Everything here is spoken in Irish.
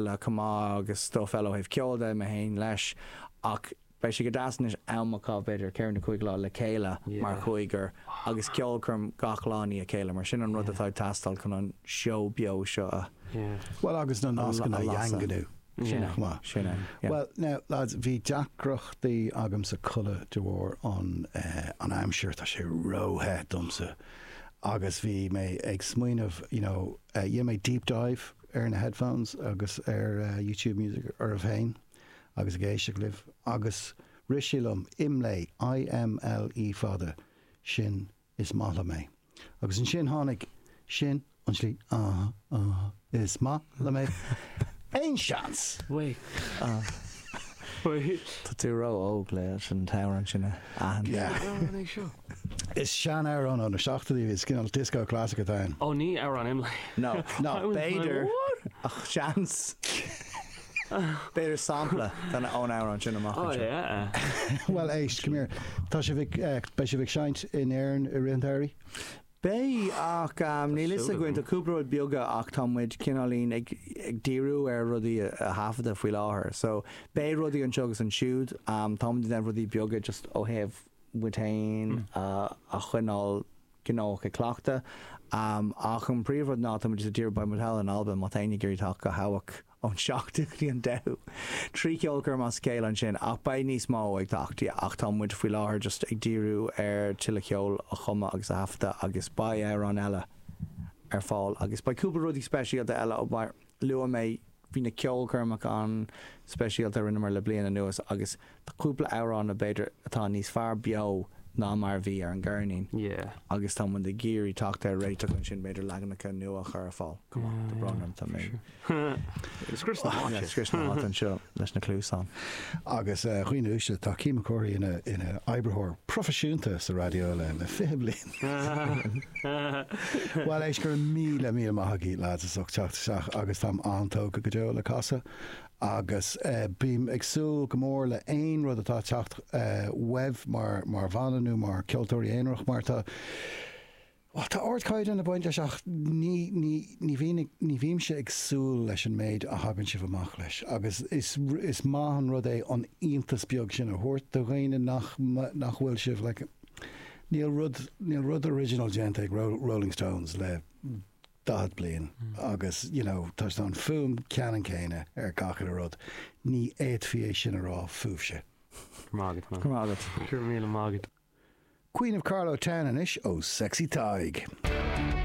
le cumadh agus stuif eile ó thaobh ceoil de, mé féin leis, ach beidh sé go deas anois am a chaitheamh, b'fhéidir, ceithre nó cúig lá le chéile mar chúigear agus ceolchoirm gach lá i ndiaidh a chéile, mar sin sin an rud atá ag teastáil chun an seó beo seo a Bhuel, agus na nascanna a dhaingniú chomh maith. Sin é. Bhuel, now, lads, bhí deacrachtaí agamsa codladh de bharr an aimsir, tá sé ró-the domsa agus bhí mé ag smaoineamh, you know, rinne mé deep dive, ar na headphones agus ar YouTube Music oraibh féin agus ag éisteacht libh agus rith sé liom, Imlé, I-M-L-E fada, sin is maith liom é. Agus ansin tháinig, sin an tslí, ah, ah, is maith liom é. Aon seans? Wait. Ah. Tá tú ró-óg leis an t-amhrán sin a. Is sean-amhrán ó na seachtóidí é, is cineál dioscó classic atá ann. Ó ní amhrán Imlé. No, no, b'fhéidir ach seans. B'fhéidir sampla den amhrán sin amach anseo. Bhuel éist, come here, tá sibh ag, beidh sibh ag seinnt in Éirinn i rith an tsamhraidh? Beidh, ach níl a fhios againn, tá cúpla rud beaga ach tá muid cineáilín ag díriú ar rudaí a thaifeadadh faoi láthair. So, beidh rudaí anseo agus ansiúd, tá muid ag déanamh rudaí beaga just ó thaobh muid féin a choinneáil gnóthach ag cleachtadh, ach an príomhrud ná tá muid just ag díriú, beidh muid thall in Albain, má tá éinne ag iarraidh teacht go hÓban. ón seachtú go dtí an deichiú. Trí cheolchoirm as a chéile ansin, ach beidh níos mó ag teacht, ach tá muid faoi láthair just ag díriú ar tuilleadh ceoil a chumadh agus a thaifeadadh agus beidh amhráin eile ar fáil agus beidh cúpla rudaí speisialta eile mar luaigh mé bhí na ceolchoirmeacha an-speisialta a rinneamar le bliain anuas agus Tá cúpla amhrán a b'fhéidir atá níos fearr beo ná mar a bhí ar an gceirnín agus tá muid ag iarraidh teacht ar réiteach ansin, b'fhéidir leaganacha nua a chur ar fáil. Tá brón orm, tá mé ag scrios na háite anseo leis na cluasáin. Agus dhaoine uaisle, tá Cian Mac Cárthaigh ina oibritheoir proifisiúnta sa raidió le 20 bliain. Bhuel, éist, go raibh míle míle maith agaibh, lads, as ucht teacht isteach agus táim an-tógtha go deo le casadh Agus bím ag súil go mór le aon rud atá ag teacht uaibh mar bhanna nó mar cheoltóirí aonarach mar tá, bhuel, tá ard-chaighdeán ag baint leis ach ní, ní, ní bhíonn, ní bhímse ag súil leis an méid a thagann sibh amach leis agus is, is maith an rud é an iontas beag sin a thabhairt do dhaoine nach, nach bhfuil sibh, like, níl rud, níl rud original déanta ag Rolling Stones le 40 bliain agus, you know, tá an fuaim ceannann céanna ar gach uile rud. Ní fhéadfaí é sin a rá fúibhse. Grma agat man. Grma agat. Go raibh míle maith agat. Queen of Carlow Town anois ó Sexy Tadhg.